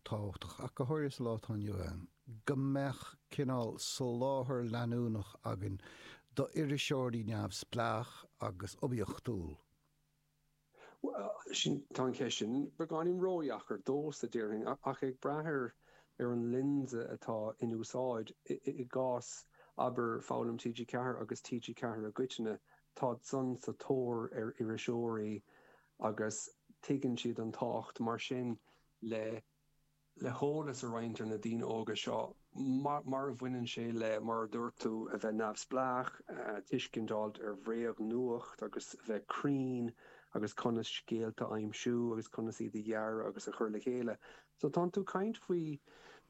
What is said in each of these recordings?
tábhachtach ach go háirithe sa lá atá inniu ann go mbeadh cineál soláthar leanúnach againn d'iriseoirí neamhspleácha agus oibiachtúla. Bhuel, sin, tá an cheist sin beagáinín ródheacair domhsa, déarfainn, ach ag brath ar ar an lionsa atá in úsáid. I gcás, abair, Foghlaim TG4 agus TG4 i gcoitinne, tá siadsan sa tóir ar iriseoirí agus tuigeann siad an tábhacht. Mar sin, le le heolas a roinnt ar na daoine óga seo mar mar a bhaineann sé le, mar a dúirt tú, a bheith neamhspleách, tuiscint a fháilt ar bhréagnuacht agus a bheith cruinn agus conas scéalta a aimsiú agus conas iad a dhearadh agus a chur le chéile. So ní hamháin tú ag caint faoi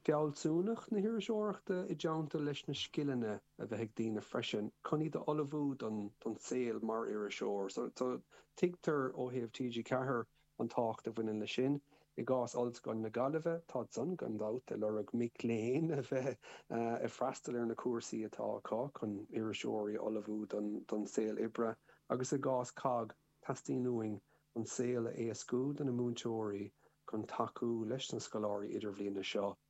fealsúnacht na hiriseoireachta i dteannta leis na scileanna a bheith ag daoine freisin chun iad a ullmhú don don saol mar iriseoir. So tuigtear ó thaobh TG4, An tábhacht a bhaineann leis sin, I gcás Ollscoil na Gaillimhe, tá siadsan gan dabht ag lorg mic léinn a bheith ag freastal ar na cúrsaí atá acu chun iriseoirí a ullmhú don saol oibre agus i gcás COGG, teastaíonn uainn an saol a éascú do na múinteoirí chun tacú leis na scoláirí idirbhliana seo.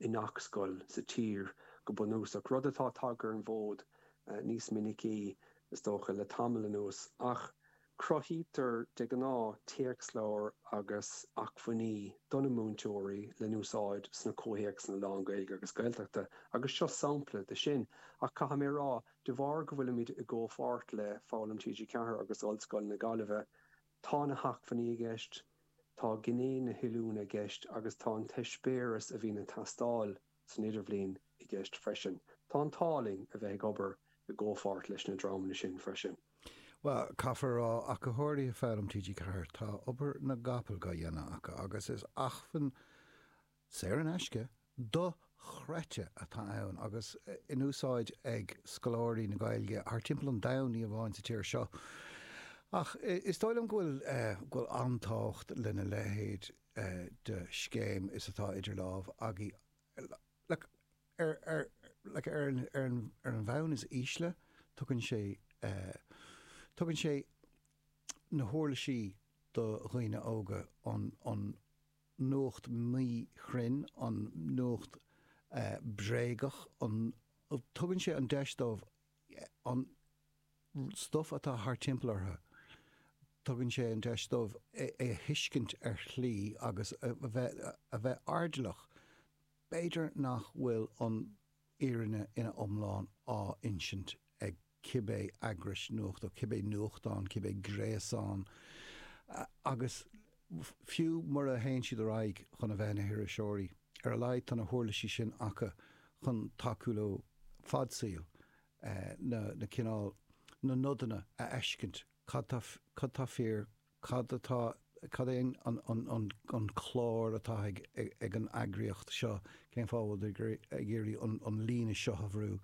i ngach scoil sa tír go bunúsach, rud atá tagtha ar an bhfód níos minicí, is dócha, le tamall anuas, ach cruthaítear de ghnáth téacsleabhair agus acmhainní do na múinteoirí le n-úsáid sna comhthéacsanna lán-Ghaeilge agus Gaeltachta agus seo sampla de sin. Ach caithfidh mé a rá, de bharr go bhfuilimid i gcomhpháirt le Foghlaim TG4 agus Ollscoil na Gaillimhe, Tá na hacmhainní i gceist, tá gné na hoiliúna i gceist agus tá an t-eispéireas a bhíonn ag teastáil san Idirbhliain i gceist freisin. Tá an t-ádh linn a bheith ag obair i gcomhpháirt leis na dreamanna sin freisin. Bhuel, caithfear a rá, a chomhghleacaithe i bhFoghlaim TG4, tá obair na gcapall dá dhéanamh acu agus is acmhainn Saor in aisce, dochreidte atá ann agus in úsáid ag scoláirí na Gaeilge thar timpeall an domhain, ní hamháin sa tír seo. Ach is dóigh liom go bhfuil, go bhfuil an-tábhacht lena leithéid de scéim is atá idir lámh againn. Ar an bhonn is ísle, tugann sé na huirlisí do dhaoine óga an. nuacht mhíchruinn, an nuacht bhréagach, an. tugann sé an deis dóibh an stuif atá thar timpeall orthu, tugann sé an deis dóibh é a thuiscint ar shlí agus a bheith, a bheith airdeallach, b'fhéidir, nach bhfuil an fhírinne ina iomlán á insint ag. cibé eagrais nuachta, cibé nuachtán, cibé gréasán, agus fiú mura théann siad ar aghaidh chun a bheith ina n-iriseoirí, ar a laghad tá na huirlisí sin acu chun tacú leo fad saoil na cineál, na nodanna a fheiscint, cad tá fíor, Cad atá, cad é an, an, an, an, an clár atá ag, ag, ag an eagraíocht seo, cén fáth a bhfuil siad ag iarraidh an, an líne seo a bhrú?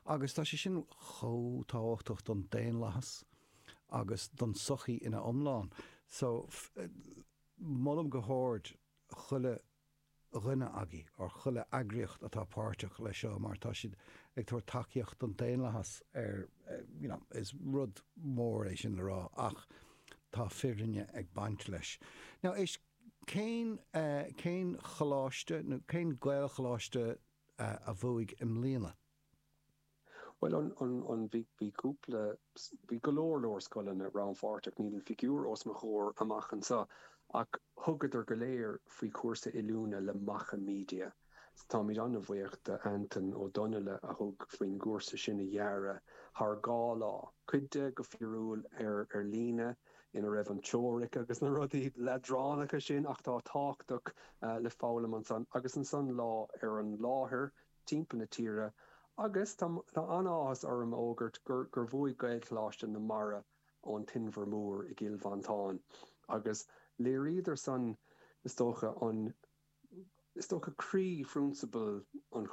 Agus tá sé sin chomh tábhachtach don daonlathas agus don tsochaí ina iomlán. So, molaim go hard chuile dhuine agaibh, or chuile eagraíocht atá páirteach leis seo mar tá siad ag tabhairt tacaíocht don daonlathas ar you know is rud mór é sin a rá ach tá fírinne ag baint leis. Now is cén cén coláiste nó cén Gaelcholáiste a bhuaigh i mbliana? Bhuel, an, an, an, bhí, bhí cúpla, bhí go leor, leor scoileanna rannpháirteach, níl an figiúr os mo chomhair amach anseo, ach thugadar go léir faoi chúrsa oiliúna le Macha Media. So táimid an-bhuíoch do Antaine Ó Donnaile a thug faoin gcúrsa sin a dhearadh thar dhá lá, cuid de go fíorúil ar, ar líne, ina raibh an teoiric agus na rudaí leadránacha sin atá tábhachtach le foghlaim ansan agus ansan lá ar an láthair. timpeall na tíre agus tá an-áthas orm a fhógairt gur bhuaigh Gaelcholáiste na Mara ón tInbhear Mór i gCill Mhantáin agus léiríodar san is dócha an is dócha croíphrionsabal an